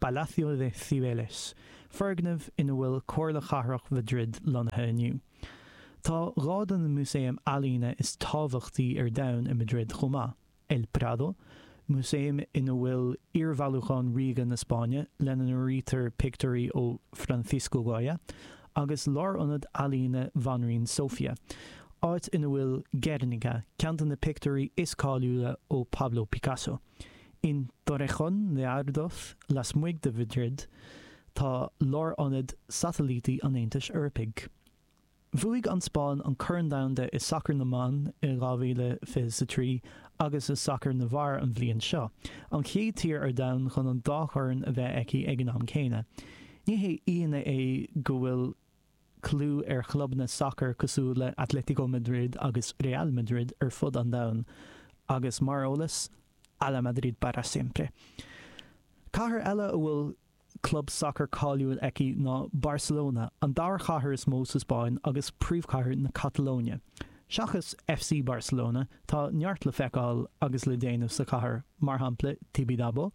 Palacio de Cibeles, foirgneamh ina bhfuil Comhairle Chathrach Mhaidrid lonnaithe inniu. Tá dhá de na músaeim ealaíne is tábhachtaí ar domhan i Maidrid chomh maith, El Prado, músaem ina bhfuil iarbhailiúchán ríoga na Spáinne, lena n-áirítear pictiúirí ó Francisco Goya, agus Lárionad Ealaíne Bhanríon Sofia, áit ina bhfuil Guernica, ceann de na pictiúirí is cáiliúla ó Pablo Picasso. In Torrejón de Ardoz, lasmuigh de Mhaidrid, tá lárionad satailítí an Aontais Eorpaigh. Bhuaigh an Spáinn an Corn Domhanda i Sacar na mBan i 2023 agus i Sacar na bhFear an bhliain seo, an chéad tír ar domhan chun an dá chorn a bheith aici ag an am céanna. Ní haon ionadh é go bhfuil. clú ar chlubanna sacair cosúil le Atlético Madrid agus Real Madrid ar fud an domhain agus, mar eolas, Hala Madrid para siempre! Cathair eile a bhfuil club sacair cáiliúil aici ná Barcelona, an dara chathair is mó sa Spáinn agus príomhchathair na Catalóine. Seachas FC Barcelona, tá neart le feiceáil agus le déanamh sa chathair, mar shampla Tibidabo,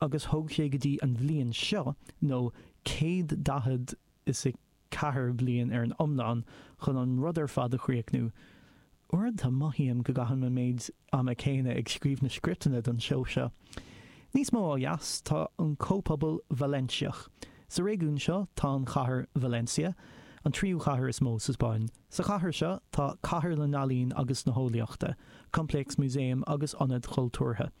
agus thóg sé go dtí an bhliain seo, nó céad daichead is a ceathair bliain ar an iomlán, chun an rud ar fad a chríochnú. Uaireanta mothaím go gcaithim an méid ama céanna ag scríobh na scripteanna don seó seo. Níos mó ó dheas tá an comhphobal Vailéinseach. Sa réigiún seo tá an chathair Valencia, an tríú chathair is mó sa Spáinn. Sa chathair seo tá Cathair na nEalaíon agus na hEolaíochta, coimpléasc músaem agus Ionad Chultúrtha.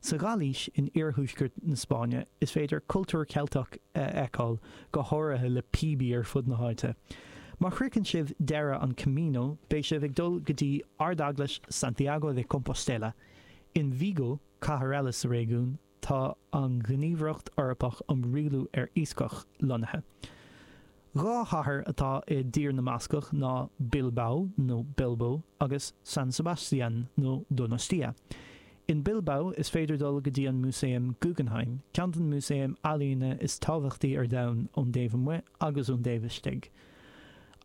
Sa Ghailís in iarthuaisceart na Spáinne is féidir cultúr Ceilteach a fheiceáil go háirithe le píobaí ar fud na háite. Má shroicheann sibh deireadh an Camino beidh sibh ag dul go dtí Ardeaglais Santiago de Compostela. In Vigo, cathair eile sa réigiún, tá an Ghníomhaireacht Eorpach um Rialú ar Iascach lonnaithe. Dhá chathair atá i dTír na mBascach ná Bilbao, nó Bilbo, agus San Sebastián, nó Donostia. In Bilbao is féidir dul go dtí an Músaem Guggenheim, ceann den músaeim ealaíne is tábhachtaí ar domhan ón dtaobh amuigh agus ón dtaobh istigh.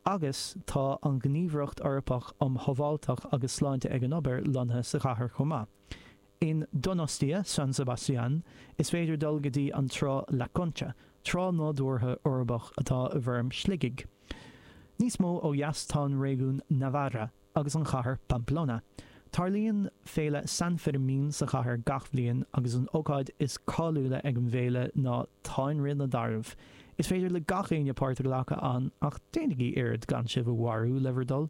Agus tá an Ghníomhaireacht Eorpach um Shábháilteacht agus Sláinte ag an Obair lonnaithe sa chathair chomh maith. In Donostia, San Sebastián, is féidir dul go dtí an trá La Concha, trá nádúrtha uirbeach atá i bhfoirm shligigh. Níos mó ó dheas tá an réigiún Navarra agus an chathair Pamplona. Tarlaíonn féile San Fermín sa chathair gach bhliain agus an ócáid is cáiliúla ag an bhféile ná táinrith na dtarbh. Is féidir le gach éinne páirt a ghlacadh ann ach déanaigí iarracht gan sibh a mharú le bhur dtoil!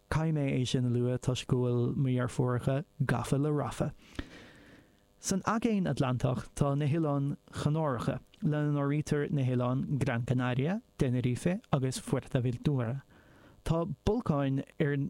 Caithfidh mé é sin a lua toisc go bhfuil mo dheirfiúracha gafa le Rafa. San Aigéan Atlantach tá na hOileáin Chanáracha, lena n-áirítear na hoileáin Gran Canaria, Tenerife agus Fuerteventura. Tá bolcáin ar.